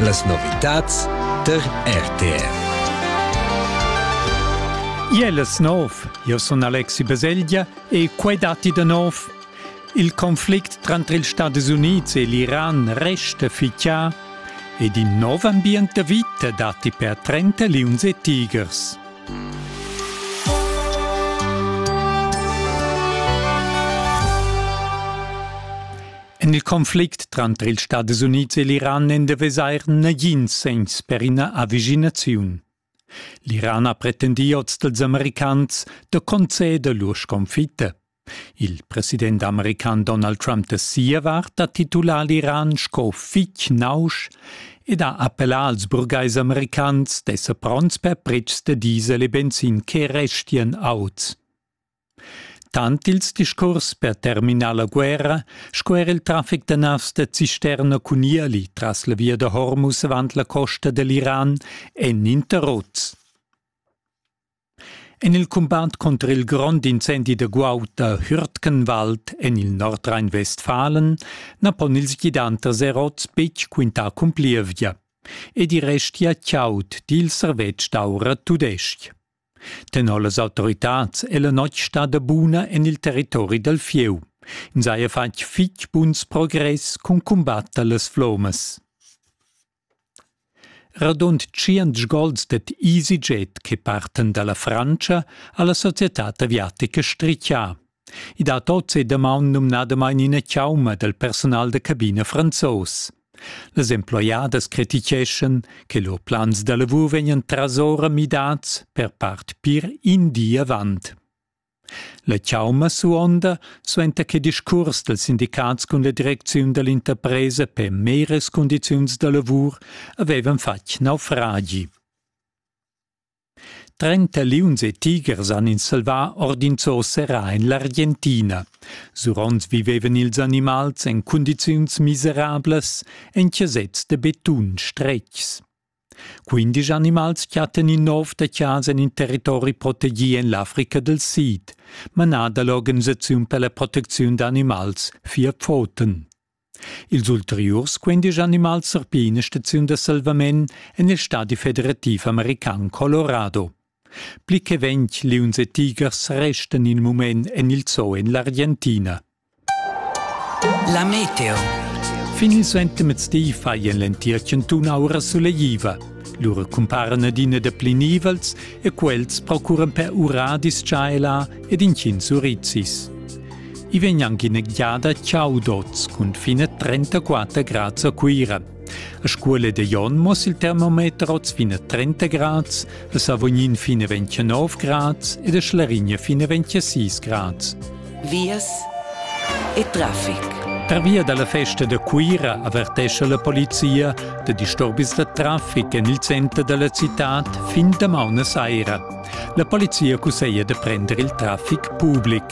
Las novitads tar RTR. Iel es nov, io sun Alexi Baselgia e quai datti da nov. Il conflict tranter ils Stadis Unids e l'Iran resta fichà ed in nov ambient da vita datti per 30 liuns e tigers. En il conflict tranter ils Stadis Unids e l'Iran n'è da vesair nagins segns per ina avvicinaziun. L'Iran ha pretendì oz dals americans da conceder lur sconfitta. Il president american Donald Trump da sia vart ha titulà l'Iran sco fitg nausch ed ha appellà als burgais americans d'esser pronts per pretschs da diesel e benzin che restian auts. Tant ils discuors per terminar la guerra sco er il traffic da navs da cisterna cun ieli tras la via da Hormuz avant la costa da l'Iran èn interrots. En il cumbat conter il grond incendi da guaud da Hürtgenwald en il Nordrhein-Westfalen na pon ils gidanters erots betg quintar cun plievgia. Ed i restia chaud, di il servetsch d'aura tudestg. Tenor las autoritads è la notg stada buna en il territori dal fieu. Ins haja fatg fitg buns progress cun cumbatter las flommas. Radund tschient gols dad EasyJet che partan da la Frantscha ha la societad aviatica strichà. I dat oz e damaun numnadamain ina chauma dal personal da cabina franzos. Las emploiadas criticheschan che lur plans da lavur vegnan trasora midads per part pir in di avant. La chauma suonda suenter che discurs dals sindicats cun la direcziun da l'interpresa per meras cundiziuns da lavur avevan fatg naufragi. Trenta liuns e tigers han ins salvà ord in zoo serrà en l'Argentina. Suront vivevan ils animals en cundiziuns miserablas en chasets da betun stretgs. Quindisch animals chattan in nov da chasa en in territori protegì en l'Africa dal Sid, manà da l'Organisaziun per la protecziun d'animals Vier Pfoten. Ils ulteriurs quindisch animals surpigl ina staziun da salvament en il stadi federativ american Colorado. Pli che ventg liuns e tigers restan in mument en il zoo en l'Argentina. La meteo. Fin il suentermezdi faien l'entir chantun aura suleiva. Lura cumparan adina da pli nivels e quels procuran per uradis tschaela ed intgins urizis. I vegn anche in egliada Ciao Dots cun fine 34 grad a Cuira. A scuola de Jon mos il termometer oz fine 30 grad, a Savognin fine 29 grad ed a Schlarigna fine 26 grad. Vias e traffic. Per via dalla festa da Cuira avertesce la polizia da disturbis da traffic en il center della città fin da mauna saira. La polizia cuseia de prendere il traffic pubblic.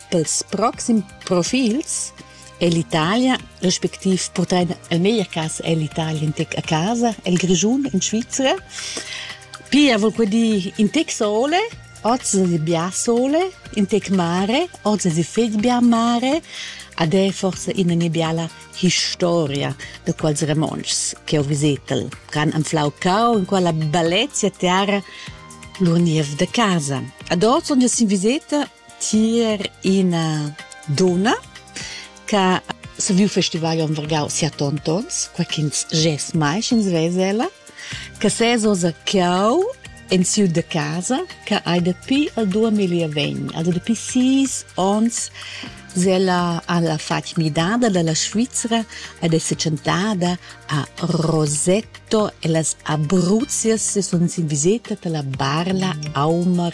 Pels proxims profils è l'Italia respectiv purtain el meglier cas è l'Italia in tec a casa, el Grischun in Svizra. Pia vol quei dir in tec sole, oz es bia sole, in tec mare, oz es fetg bia mare, ad è forse ina nebiala historia da quels Ramontschs che ho visetel, ch'han anflau cau in quella bellezia terra lur niev da casa. Ad oz, onde sin viseta, tier ina dunna che ha saviu festivar Jon Vargau sia tontons, quei ch'ins gest mai sch'ins vess ella, che ses oz a Cau en siu de casa che ei dapi al 2020, also dapi sis onns ella ha fatg midada dalla Svizra ed è setschentada a Rosetto e las Abruzias sun sin viseta dalla Barla Aumar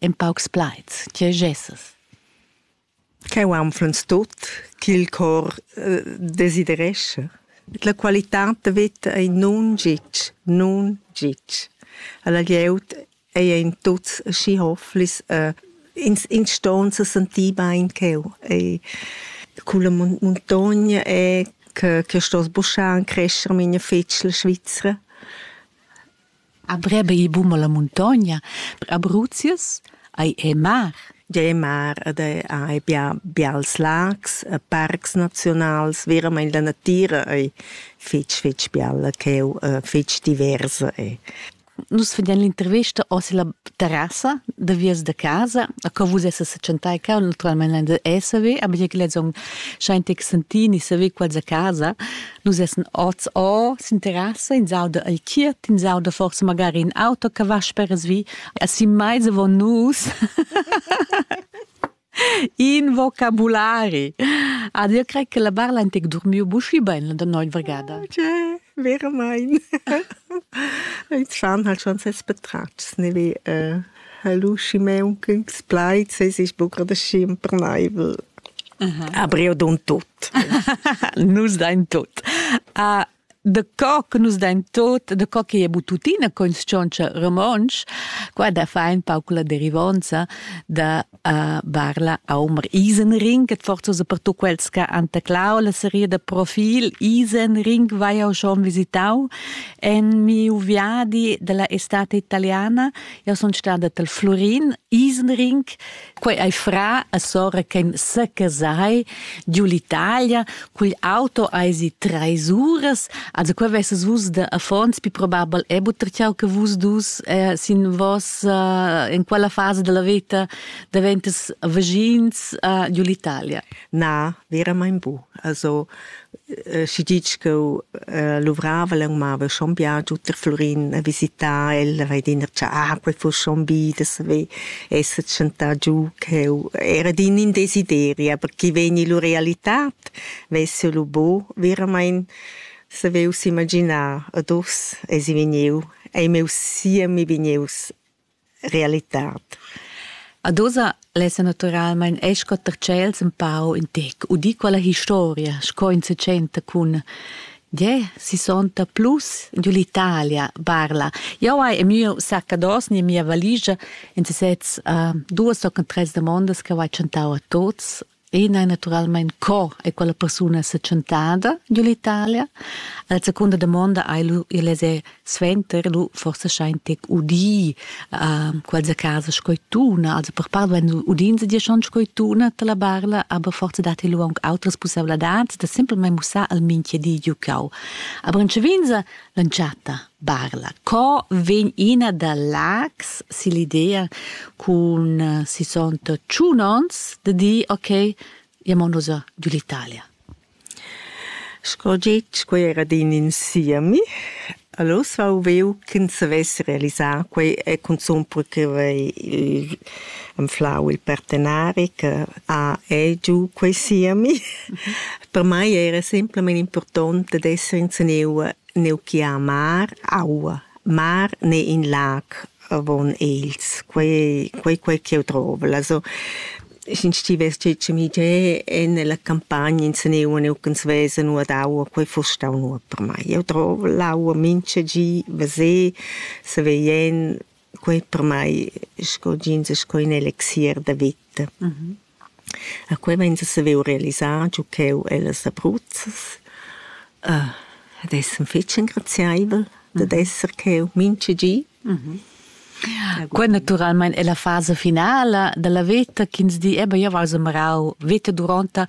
en paucs plaids, tge gesses? Ch'eu anflens tot ch'il cor eh, desiderescha. La qualità da vita ei nun gitg, nun gitg. Alla glieud ei ein tuts schi hofflis, eh, ins, ins ston se sentir bein ch'eu ei culla muntogna è che, che sto sbuschar e crescer mine fitschel Svizzera. A breba il bum alla muntogna, per Abruzius ei ei mar. Ei mar ed ei bia bials lags e parcs nazionals, veramein la natira ei fetg fetg bialla cheu, fetg diversa ei. Nus vegnan l'intervesta oz ella terrassa da vias da casa, a co vus essas setschentai cau, naturalmein ein da esser ve, aber jeu lezong schein tex sentini saver quals a casa, Nus essan oz or, s'interessa, ins auda il chiert, ins auda forse magari in auto che va speras vi. E si mai von nus. In vocabulari. Ad io cred che la barla ha dormiu bushi bene da noi vergada. Tja, vero mein. Il Zahn hat schon ses Betratschs, ne wie äh, Hallo Simon, gutes Bleiz, es ist buca da schi impernaivel. Aber io don tot. nus dain tot. Uh, de co che nus dain tot, de co che è buttutina con cioncia romonsch, qua da fa un pauc la derivonza da a Barla Aumer Isenring, et forza so per tu quels che han teclau la serie da profil Isenring vai jau schon visitau en miu viadi della estate italiana io son stada tel Florin Isenring quei ei fra a sora che sa casai giù l'Italia Cugl auto eisi treis uras, also qua vesses vus de affons pi probabel e butter ciao che vus dus eh, sin vos eh, in quella fase della vita daventas vagins eh, giù l'Italia. Na, veramente bu. Also eh, si dic che eh, luvrava le umava schon bien giù per Florin a visitare, el va dir ah, quel fu schon bi, das ve esser tschentà giu ch'eu era d'in in desideri, aber chi vegn illo realità vess eu lu bo veramaing savevs imaginar ad uss esi vegnieu ei meus siemi vegnieus realitad. Ad oza lessa naturalmaing escotter tschels ün pau ün tec u di quella historia sco in se tschenta cun Gie, si sonta plus giu l'Italia, barla. Jau hai e miu saccados ni mia valigia in sezs uh, duas o tres demandas che ho tschentau a tots. Ina è naturalmente co è quella persona se tschentada giu l'Italia. La seconda domanda hai lu il es suenter lu forsa schein tec udì uh, quels a casa sco tuna also per part wenn du udin sie dir schon sco tuna te la barla aber forse dat lu aunc outras possibilidades da simpelmente mussar al minchia di giucau aber in cevinza lanciata barla co vegn ina da lags si l'idea cun uh, si sont tschunons de di ok jamo nos giù l'Italia Sco getg, quei era adina in siemi. Allura vau viu ch'ins savess realisar quei e cunzun perquei ch'igl anflau il partenari che ha egiu quei siemi. Per mei era semplamein impurtont dad esser inseniu neu gia a mar, aua. Mar n'è in lag Va bun ils, quei, quei, quei ch'jeu drovel. Also, sch'in sti vestgi chemigé e nella campagna inseneua neuc'ans vesa nu ad aua, quei fuss stau nuot per mai. Jeu drovel l'aua mincha gi, veser, saver jen, quei per mai sco jeans e sco in elixier da vita. A quei vegn a saviu realisar giu cheu ellas abruzzas. ad esser fetg engrazieivel dad esser cheu mintga gi. Quei naturalmein è la fasa finala dalla veta ch'ins di, eba, jeu vai semarau veta duronta.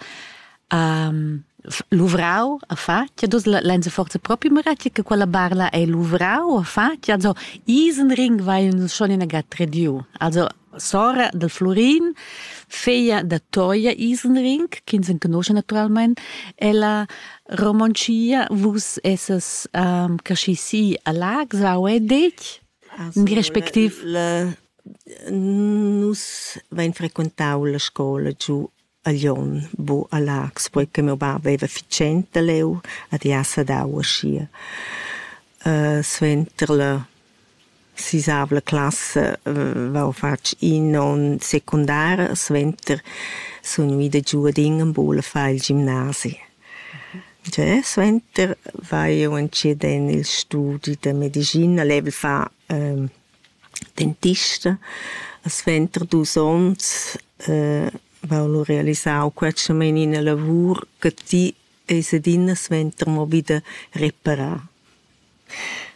Luvrau a fatg, e dus lein se forza propi meretg che quella barla ei luvrau a fatg. Also, Isenring vai nus schon in agat rediu. Also, sora del Florin, figlia da Toia Isenring, ch'ins enconosce naturalmente, ella romoncia vus esses um, caschi si a Lags, au è dec? In respectiv? La, nus vain frequentau la scola giu a Glion bu a Lax, poi che meu bab veva fitschent da leu ad jassa dau aschia. suenter la sisavla classa vau fatg in onn secundar, suenter sun ida giu ad Ingenbul a far il gimnasi. Già suenter vai jeu entschiet en il studi da medischina, level fa dentista. Suenter dus onns va ho realisau quetschamain ina lavur che ti eis adina suenter mo vi da reparar.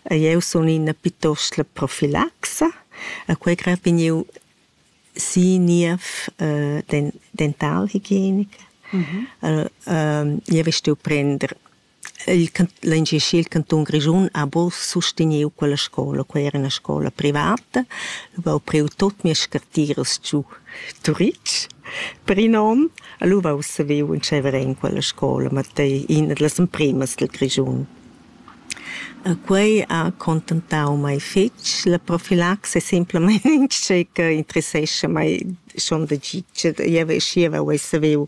E jeu sun ina pietost la profilaxa, a quei grad vegn jeu si niev den dentalhigienica. Jeu vestel prender Il l'engaschi il cantun Grischun ha buc susteniu quella scola. Quei era ina scola privata. Leu ho priu tut mias scartiras giu Turitg per in onn. E lu vau saviu entscheiver en quella scola, ma ei ina dallas empremas dil Grischun. E quei ha contentau mei fetg. La profilaxia è semplamein in tgei che interessescha mei schon da gitg. Jeu schieva uei saviu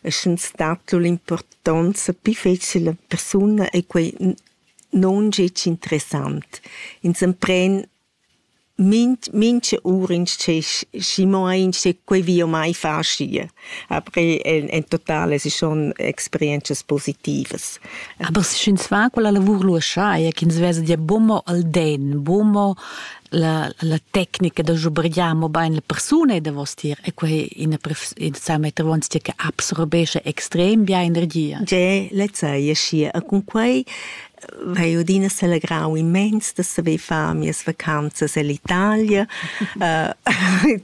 e sche stat lur impurtonza pli fetg alla persuna ei quei non gec interessant. Ins empren minch, mincha ura insce, schi mo insce quei vi o mai far schi. Aber en, en total es schon experientschas positivas. Aber sch'ins fa quella lavur lu schai, ch'ins vesa dir bumo al den, bumo la, la tecnica da schubrigliar mo bain la persuna davostier e quei ina sa meter vonzia che absorbesce extrem bia energia. Ge, lezza e schi e cun quei vai odina selegrau immens da saver far mias vacanzas ell'Italia uh,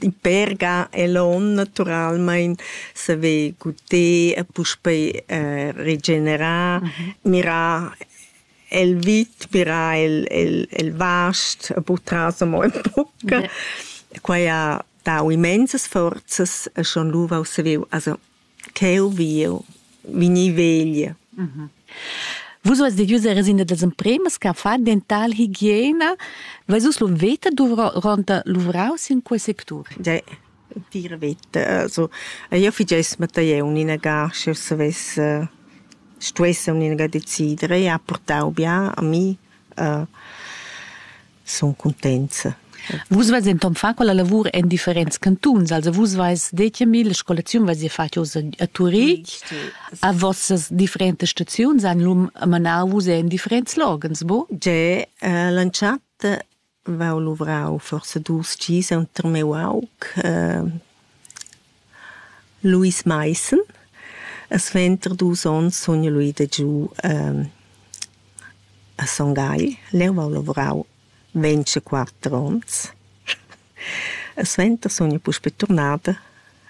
in Perga e l'on naturalmein saver guder e puspei uh, regenerar mm -hmm. mirar el vit pirà el el el vast e purtras amo ün poch. Quai ha dau immensas forzas e schon lu vau saviu also cheu vi jeu vegnir vegl. Vus ves devius eres in das empremas che fa dental higiena. Ves us lu veta duvra ronta luvrau sin quei sectur? Ge. Tira veta, also io figess mattei uninaga sch'eu savess stuess uninaga decider. Ella ha portau bia a mi, sun cuntenza. Vus veis denton fatg quella lavur en differents cantuns, also vus veis detg a mi, la scolaziun veis ihr fatg oz a Turitg, a vossas differentas staziuns han lum manau vus en differents loghens, bo? Ge, l'entschatta vau luvrau forsa dus gis enter miu aug Luis Maissen. E suenter dus onns sun io lu ida giu a Son Gagl. Leu vau luvrau ventg e quatter onns. E suenter sun io puspei turnada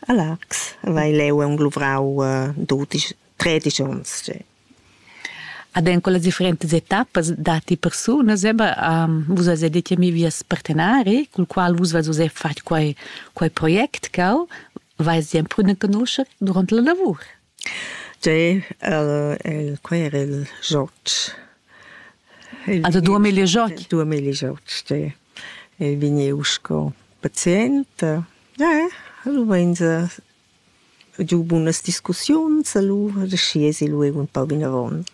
a Largs. Vai leu aunc luvrau dudisch, tredisch onns. Ad en quellas differentas etappas datti persunas, eba, vus as detg a mi vias partenari, cul qual vus vais uss fatg quai, quai project cau, vais ti emprunar canuscher durant la lavur. Tgei el, el quei era il joc. Il, ah, da dua miglia joc? Dua miglia joc, sì. Il vegniu sco pazient. Ja, ja, lu vein se giu bunas discussiuns allura da schiesi lu eun pau vinavon.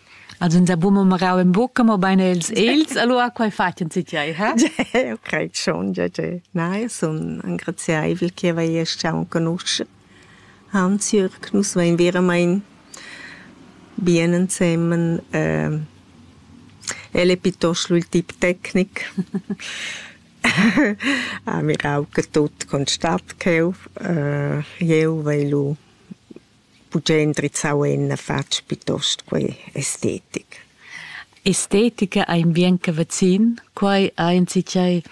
Els han sa buca mo marau en bucca, mobein els els, allura quei fatg en tgei, ha? Jeu crei schon, ja, ja. Nein, sun engraziaivel che vei stau enconuscher Hans Jürg. Nus vein veramein bien ensemen. El è piuttosto il tip tecnic. Ah, mirau che tut constat cheu. jeu vai lu buca endrizzau en fatg piuttost quei estetic. Estetica ei in bien che vecin, quei ei enzatgei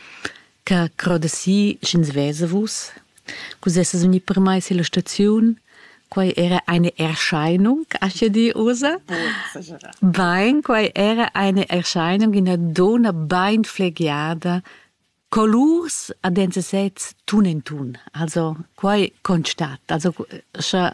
che croda si sch'ins vesa vus. Cus essas vegni permess illa staziun? Quai era eine Erscheinung, acha di usa? Bain, quai era eine Erscheinung, ina donna bain flegiada, colurs a dents sez tun in tun. Also, quai constat. Also, scha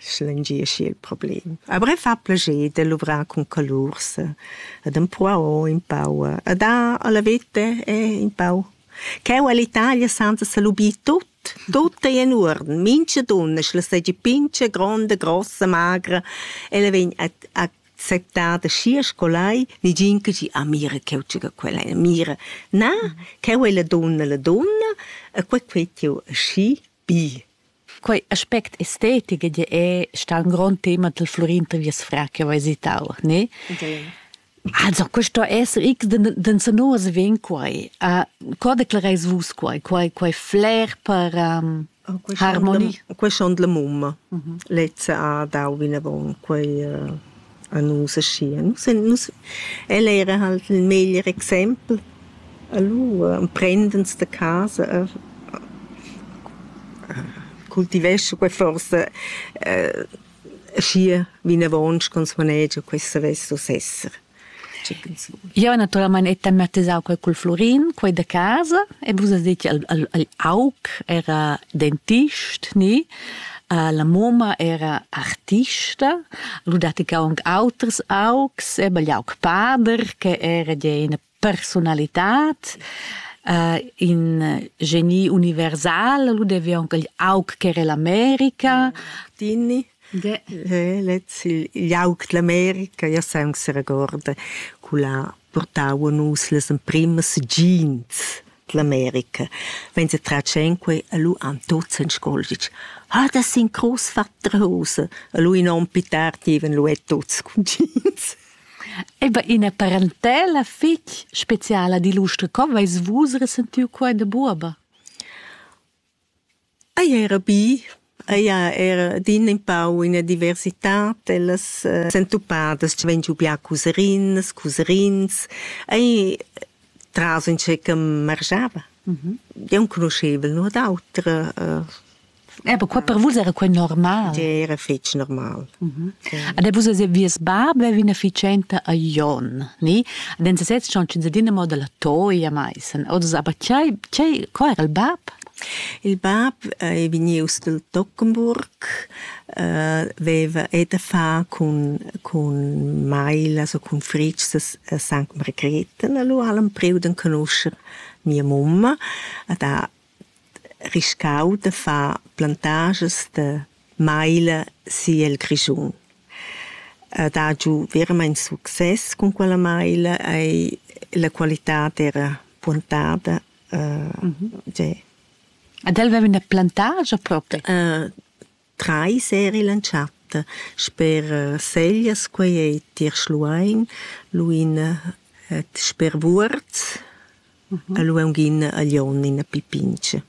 schlengieschi il problem. Avrai fa plascher de luvrar cun colurs ed empruau un pau ed ha alla vete e un pau Cheu all'Italia senza salubir tut, tut è in urden, mincha dunna sch'la seigi pincha, gronda, grossa, magra, ella vegn a acceptada schi scolai, nigin che gi, ah mira cheu tschega quella, mira, na, cheu è la dunna la dunna, e quei quei tiu aschi, Bi. Quei aspect estetic ed è sta un grond tema del Florin da Viasfra che ho visitau, ne? Also, questo esser ich den den Sanoas ven quai. Uh, co declareis vus quai? Quai quai flair per um, harmonie? Quei schon la mumma. Lezza ha dau vinavon quei uh, a nus aschia. Nus en nus, el era halt il meglier exempel. Allura emprend'ins da casa a a cultivescha quei forsa eh aschia vinavon sch'ins manegia quei savess uss esser. Tgei ch'ins vul. Jeu naturalmein hai tematisau quei cul Flurin, quei da casa, e vus has detg al al al aug era dentist, ni? La mamma era artista, lu datti che aunc auters augs, eba igl aug pader che era gia ina personalitad, in geni universal, lu devi aunc igl aug che era l'America. Tini. Ge. Lez, igl aug dell'America, io sai aunc se regorda, cu l'ha portau a nus las emprimas jeans. L'America vegn setratg enquei allu Antozens scoldic: «Ha da sin crus fatta rosa!» Allu in onn pli tard dieven lu er tuts cugins. Eba ina parentela fich speciala digl uster, co veis vus resentiu quei da buoba? Ei era bi, ei ha era adina empau ina diversitad ellas sentupadas che vegn giu bia cuserinas, cuserins. Ei tras entscheica margiava. Jeu enconuschevel nuot auter. Aber qua per vus era quei normal. Tgei era fetg normal. Ad vus es vies bab vevin efficienta a Jon, ni? Ad en sesez schon ins adina mo dalla toia mai. Sen odas aber chai chai qua era il bab? Il bab è vegnius dal Tockenburg, äh, veva et a fa cun, cun Mailas o cun Fritgs a Sankt Margrethen, allora l'han priu d'en conoscer mia mamma, ad ha riscau da far plantaschas da maila siel Grischun. Ed ha giu veramein success cun quella maila ei la qualitad era puontada. Ed el veva üna plantagia propri? Trais eir illa chatta sper Seljas, quai es tier Schluein, Luin ed sper Vuorz e Luongin a Lion in Pipinch.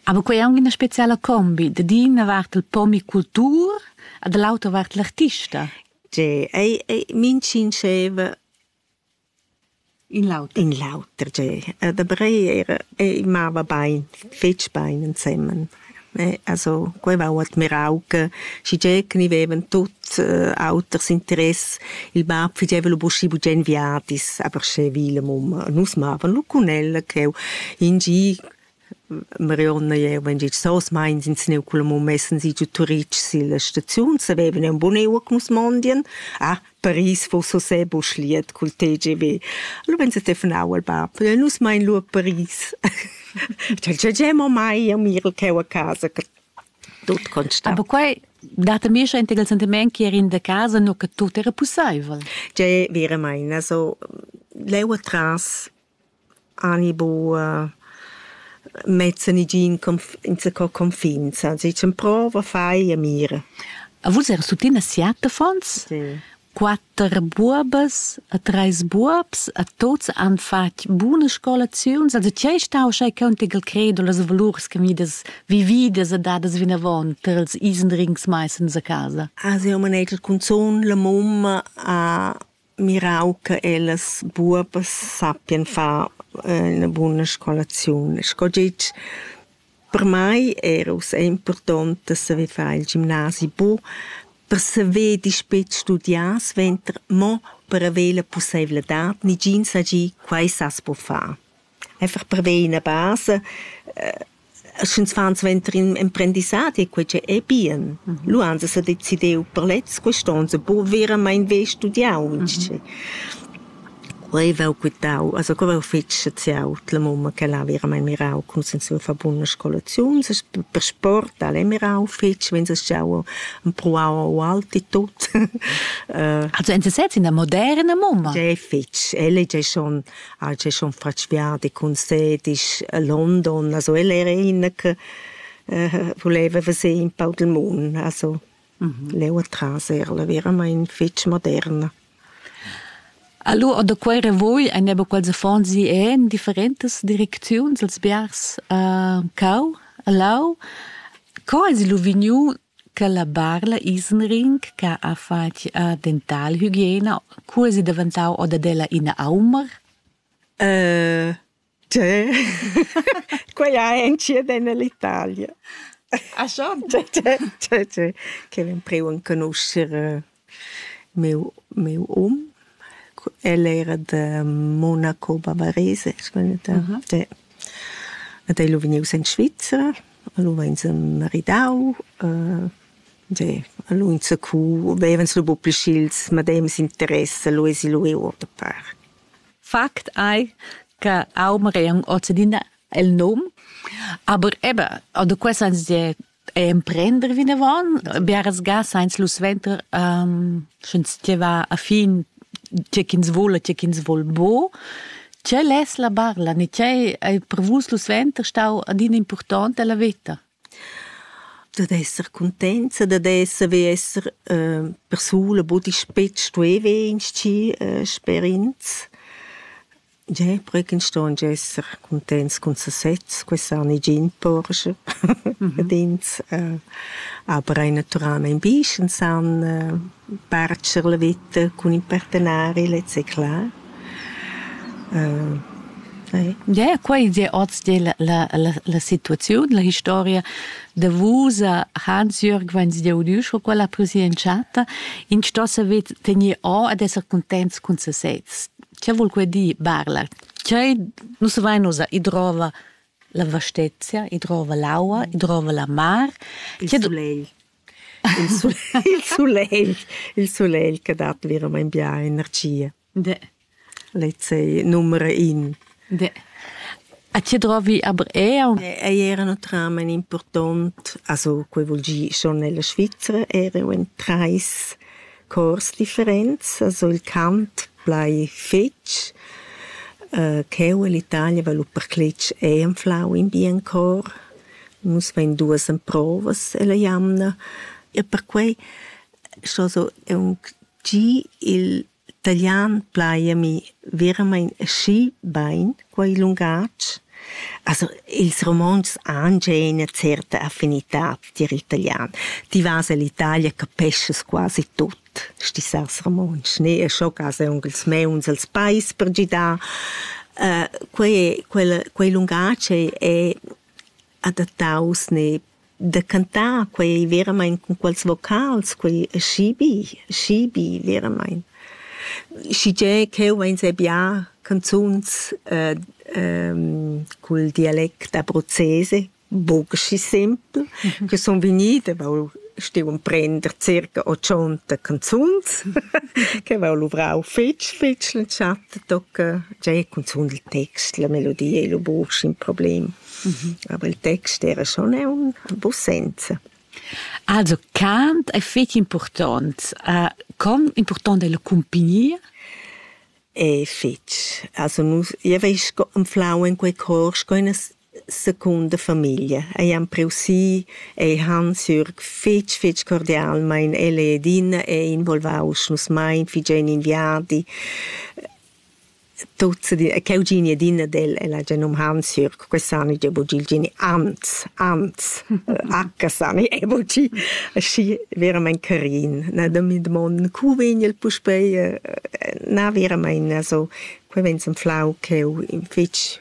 Aber quei è anche una speciale combi. Da d'ina vart il pomicultur e dall'autra vart l'artista. Tge, ei, ei, min sinceva In l'auter. In l'auter, tge. Da Breil era, ei mava bein, fetg bein ensemen. Eh, also, quei va ho admirau che schigie che ni vevan tuts eh, auters interess, il bab figeva lu buschi bugen viadis, aber sche vile mum. Nus mavan lu cun el cheu in gi Marionna jeva in git sós meins ins gneu cul mum messen si giu Turitg silla staziun, savevan eun bun euc nus mondien. Ah, Paris fuss uschè buc liet cul TGV. Allura vegn se telefonau al bab, nus mein lu a Paris. Tg'el tg'ei gei mo mai a mir cheu a casa, tut constant. Aber quei dat a mi schein il sentiment che er in da casa nu che tut era pusseivel. Tgei veramain, also leu atras Ani buc mezza negin insaco confin, sez dicen prova, fai e mira. A vus era tuttina siat affons? Sì. Quatter buobas e treis buobs e tuts han fatg buna scolaziun. Also tgei stau schai cheu tigl credo las valurs che midas vividas e dadas vinavon per ils isendrings mai sens a casa? Ah, siu manegia cunzun la mumma ha mirau che ellas buobas sappien far ina buna scolaziun. Sco gitg per mei era ussa impurtont da saver far il gimnasi bu per saver dispet studiar suenter, mo per haver la pusseivladad, negin sa gi quei sas buca far. Einfach perver ina basa, sch'ins fa suenter in emprendissadi, quei che ei bien. Mm -hmm. Lu ans ha decidiu per lez quest'onns, buca veramain ver studiau inschi. Mm -hmm. Quei vau quitau, also quei vau fetg saziau la mumma che l'ha veramain mirau cum sen sia fa buna scolaziun, per sport al è mirau fetg, wenn es schau pruau o alti tot. Also en se selbst in der moderna Mumma? È fetg, elle è schon ha el schon fatg viadi cun se disch a London, also el era innen che äh, voleva veser in pau del mund, also mhm. leu atras era veramente fitch moderna. Allora, da quei voi ein eben quels affons sie en differentes Direktions als biars äh, cau, lau. Co es lu vegniu Che la Barla Isenring che ha fatg dentalhygiena, curs è daventau o dad ella ina aumar? Tgè? Quella è incidenda l'Italia. Ah schon? Tgè, tgè, tgè. Quella empreu enconuscher Miu miu um, el era da Monaco bavarese, as vegnet a de ed el ho vegnius en Svizra, al huv'ins maridau, de al ho inzacù, vevans lu buca pli sch'ils medems interess, lu esi lu eu ota part. Fakt ei, che aunc magari aunc ozadina il num, aber eben, oder quests ein sehr emprender vinavon biaras ga sainz lu suenter um, sch'ins steva a fin tge ch'ins vole, tge ch'ins vol bo tgei less la barla ni tgei ei per vus lu suenter stau adina impurtont della veta? dad esser contenza, dad esser wie esser äh, persona, wo dich spetzt, wie weinst äh, sperins. Jeu prechen ston esser cuntents cun sesez, quei sa negin porscher ad ins. Aber ei naturalmein bi, sch'ins san bartscher la veta cun in partenari, lez ei clar. Ie, quei ei oz dir la, la, la, la situaziun, la historia davusa Hans-Jürg Wenzdiaudü sco quella ha pursi entschatta. Ins sto saver tener o ed esser cuntents cun sesez. Che vul quei dir barlar? Tgei nus vein ussa, i drova la vastezia, i drova l'aua, i drova la mar. Il sulegl. Il sulegl, il sulegl, il sulegl che dat veramein bia energia. De. Lezei numera in. De. A ti drovi aber eau? Ei era un tramen important, also quei vul gi schon nella Svizzera, era un trais Chors differents sul cant plai fetg. Cheu ell'Italia vala percletg ei anflau in bien chor. Nus vein duas emprovas ella jamna e perquei sco so aunc gi il talian plai a mi veramein aschi bein. quei lungatg? Also ils romontschs han gia ina certa affinitad tier l'italian. Ti vas ell'Italia, capeschas quasi tut stisas romontsch, ne? E scho cas aunc ils meuns els pais per gidar. Quei quel quei lungatg è adattaus ne da cantar quei veramein cun quels vocals, quei schibi, schibi veramein. Schigie cheu vein se bia canzuns äh, ähm, col dialect abruzzese, bugschi simpel, mhm. che son vegnite, vau stiu prender circa 80 canzuns, che vau luvrau fitch, fitch l'entschatta, tocca già cunzun il text, la melodia e lo bugs in problem. Aber il text era schon aunc en buc senza. Also cant è fetg important. Uh, com important è la compagnia? È fetg. Also nus, io veis anflau in quei cor sco una secunda famiglia. Ei han preusi, ei Hans-Jürg fetg, fetg cordial, ma in ele ed in è involvaus nus mai, figen in viadi. Tut se di e cheu gini adina del el ha già num Hansjörg, que sani già buc il geni Hans, Hans, H sani e buci aschi veramein carin. Na da mi dmond cu vegn el puspei, na veramein, also quei vegn semflau cheu in fetg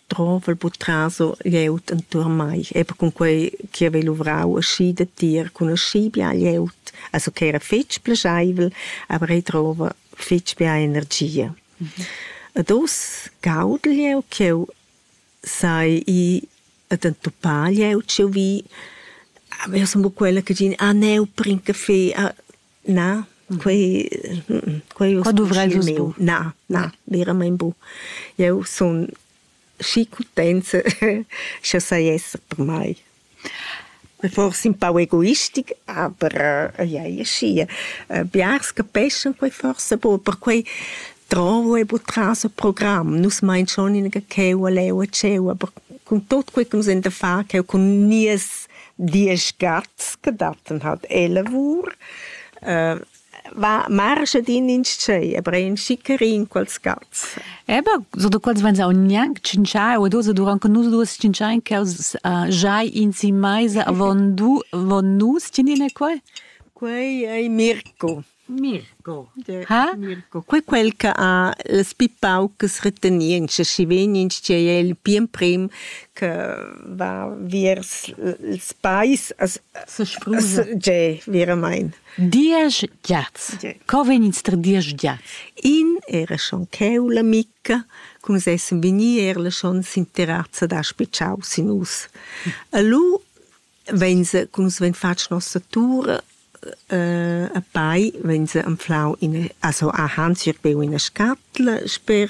drovel buc traso glieud entuorn mei, eber cun quei che havei luvrau aschi da tier cun aschi bia glieud, also che era fetg plascheivel, aber ei drova fetg bia energia. Ed oz gaudel jeu ch'jeu sai i ad entupar glieud ch'jeu vi, aber io sun buc quella che din, ah, neu, bring caffè, ah, Na, quei quei uss miu. Na, na, veramein bu. Jeu sun schi cutenza sche sai esser per mei. Forse un pau egoistic, aber ja, ja, schi. Biars capeschan quei forse bu, perquei Dravo e buca tras il program. Nus mein schon inaga cheu a leu e tscheu, aber cun tot quei che nus ein da far cheu cun nies diesch gats che datten halt e lavur, äh, va marschet in in tschei, aber ein schickerin quels gats. Eba, so da quels vegns aunc gnanc tschintschai o dus, durant che nus duas tschintschein ch'els uh, giai in si meisa avon du, avon nus, tinin e quei? Quei ei Mirko. Mirco. Ha? Mirco. Quei quel che ha las pi paucas retenientscha, schi vegn intschei el pli emprem che va viers ils pais a Sesprusa. Ge, veramein. Diesch giats. Co vegnins diesch giats? In era schon cheu la Micca, cum sessen vegnir era schon sinterazza da spitschau sin us. E lu Vegns cun vegn fatg nossa tur a pai vegns anflau ina also a han schirbeu ina scatla sper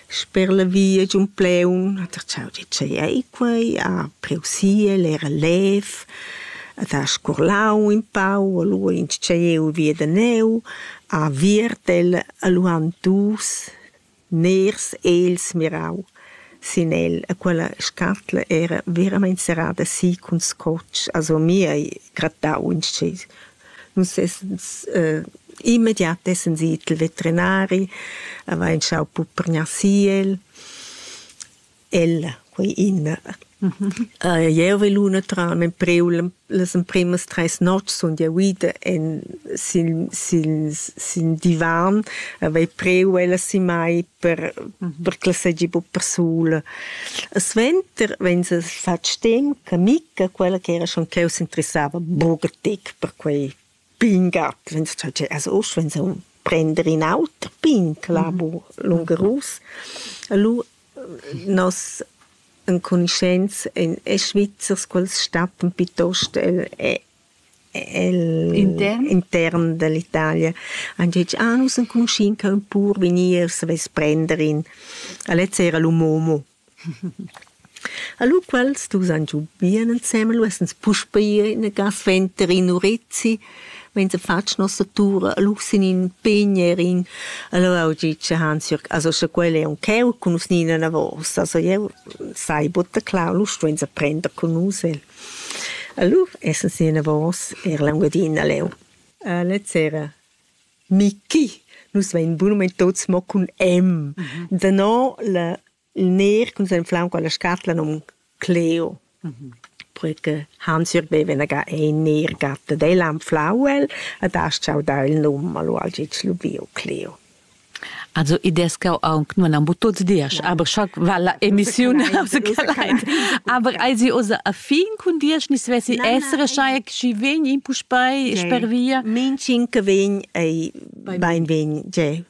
sper la via giun Pleun ha tratschau di tgei ei quei ha priu siel era lev hat ha scurlau in pau a lu intscheiu via da neu ha viertel a lu han dus Nairs ha els mirau sin el e quella scatla era veramein serrada si cun scotg, also mi hai grattau intschess. Nus essens immediat essens i i'l veterinari, avain schau puprgnar si el. Ella, quei Inna. jeu vai luna tram en priu las emprimas treis notgs sun jeu ida en sin sin sin divan havei priu ella si mai per per che segi buc persula. E suenter vegn se fatg stem che Micca, quella che era schon cheu s'interessava buca tec per quei Pingat, vegns tü tgei as uss vegns eu prender in auter pin che l'ha bu lungerus. Lu nos encunuscents èn e Svizzers quels stattan piuttost el el intern intern dall'Italia. Han detg ah nus enconuschin ca ün pur vegni e savess prender in. A lezza era l'um homo. A lu quels dus han giu bien ensemen, lu essens puspei ina ga suenter in urizzi, vegn fatg nossa tur, lu sin in pign erin, allura ho dit che Hansjörg, also sche quel è uncheu cun nus ni inavos, also jeu sai buca clar, lu stuensa prender cun nus el. Allura essens inavos er l'Engiadina leu. Lez sera Michi, nus vein bunamein tuts mo cun M. Danò la, il ner cun s'enflau con la scatla nom Cleo. Poi che Hans-Jürg veva ga ein ner gatta dei l'anflau el, ad ha schau dar il num, allo ha gitg lubiu Cleo. Also i des jau aunc nun am tuts dias, aber scha va la emissiun aber ei sie osa a fin cun dias ni svessi essere schai chi vegn in puspei sper via min cinque vegn ei bein vegn je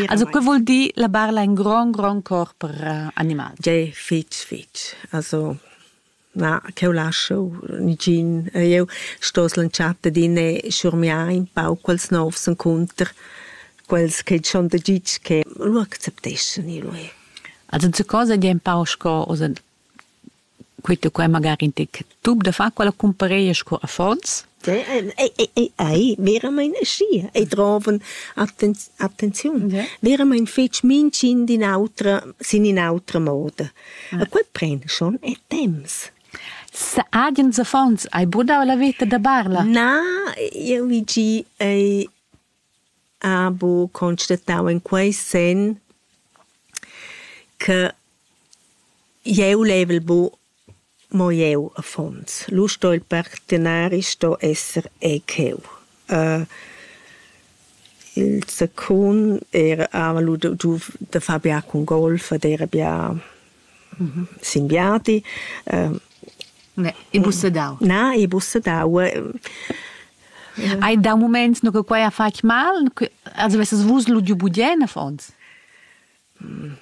Also que vuol dir la barla in grand grand corp per animal. Je fitch fitch. Also Na, ch'eu lascho nigin. Eu sto slantschar adin e schurmiar ün pau quels novs encunter, quels che dschon da gitg che lu accepteschan i lui. Also ze cosa gie un pau sco oza quit e quai magari in tec tub da far quella cumpareia sco affons Ei veramein aschia, ei drovan attenziun, veramein fetg mintgin d'in autra, sin in'autra moda. E quei pren schon e temps. Agens affons hai brudau la veta da Barla? Na, jeu vi gi, ei ha buca constatau in quei senn che jeu level bu mo jeu affons. Lu sto il partenari sto esser ei cheu. Il secund era hava lu giu da far bia cun golf ed era bia Singhiati Ibussedau. Na, Ibussedau. Hai dau moments no che quai ha fatg mal? Also vesses vus ludiu budien affons?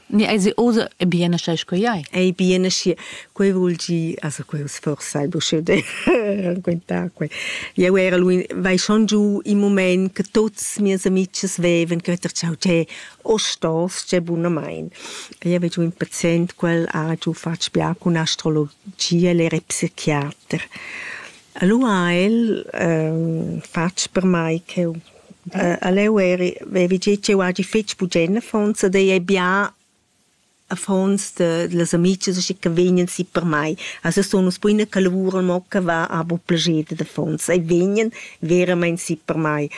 Ne, also osa e bien aschi sco jai. Ei bien aschi. Quei vul gi, also quei sforsa il busche de quenta quei. Jeu era lui, vai schon giu in moment che tuts mias amics veven, che ter ciao, che Ostals gie bunamain. Io hai giu in pazient quel ha giu fatg bia cun astrologia ella era psichiater. Alura ha el fatg per mei ch'jeu aleu eri vevi gî ch'jeu hagi fetg bugen affons ed ei ei bia affons de, las amichas che che vegnan si per mei. Also sun nus buina che lavuran mo che va ha bu plager dad affons e vegnan veramein si per mei.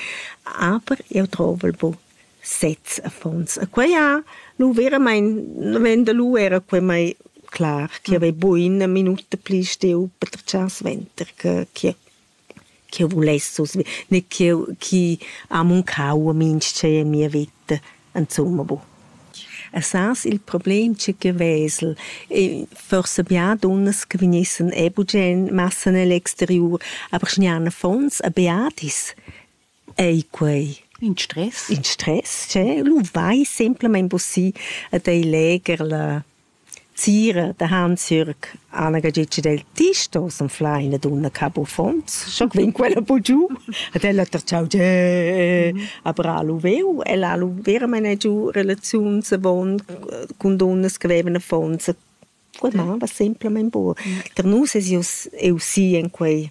Aber eu trovo bu sez affons. E quei ha lu veramein ven da lu era quei mai clar, che havei buina minuta pli steu per tratschar suenter che che ch'eu vuless susi ne ch'eu chi ha muncau a minchè in mia vita insumma boh. E sas il problem cha que vesel e forsa bia dunnas che vegnessan e bugen massa nell exteriur, aber schnean affons e beadis ei quei. In stress. In stress, che lu vai semplamein bussì ad ei leger la Sira da Hansjürg Anna Gagitsch del Tisto s'anfla ina dunna cab uffants, scho vegn quella bu giu, ed ella tertschau ge aber ha lu veu, ella ha lu veramein giu relaziuns avon cun dunnas che vevan affons. Quei mava semplamein buca. Per nus es ius eu si en quei.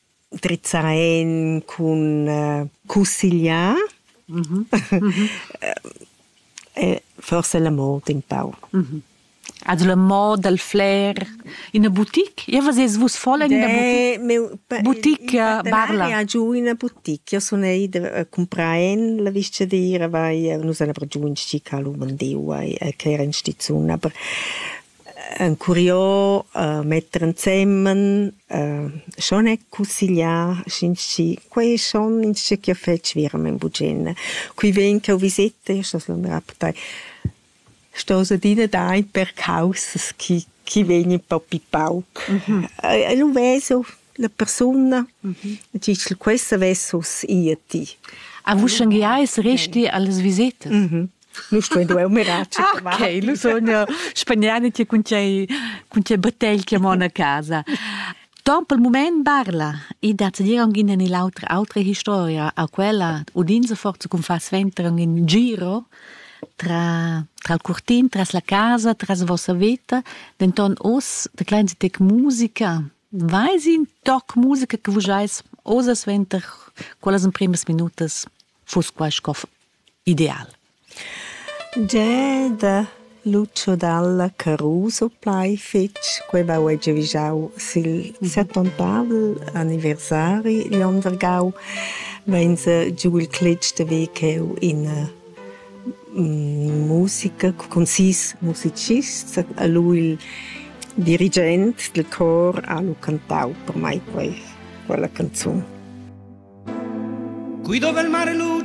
drizzar en cun cussigliar. Mhm. Mhm. e forse la moda un pau. Mhm. Also la moda del flair in una boutique? Io vas vus voll in una boutique? Boutique eh, barla. giù in una boutique. Io sono ida a comprare la viscia di ir vai nus ana giù in sci calu mandeu e che era in stizuna. Aber Encuriò metter ensemmen, schon e cussegliar, sch'ins schi, quei è schon in schi ch'jeu fetsch verament bugien. Qui ven ch'eu visetta, io sto suandar a partei, stos adina dar in per caussas chi chi vegnan propi pauc. E lu ves eu la persuna, e tgi ch'el questa vess uss ir a ti. A vuschengiais resti allas visetas? Nu stuein duer mirar. Ok, lu sogno spagnani ti cun tgei cun tgei bottegl che mon a casa. Don pel mument parla e da zedir anche in l'altra altra historia a quella udinza forza con fa sventare in giro tra tra il curtin, tras la casa, tras vossa vita, denton os de klein tec musica. Weiß in toc musica che vus eis osa sventer quellas in primas minutas fus quai scof ideal. Gie da Lucio Dalla Caruso plai fetg quei va uei giavischau sil settontavel anniversari igl Ondergau vein se giu il cletg de ve cheu in musica cun sis musicists a lu il dirigent dil cor ha lu cantau per mai quei quella canzun. Qui dove il mare luce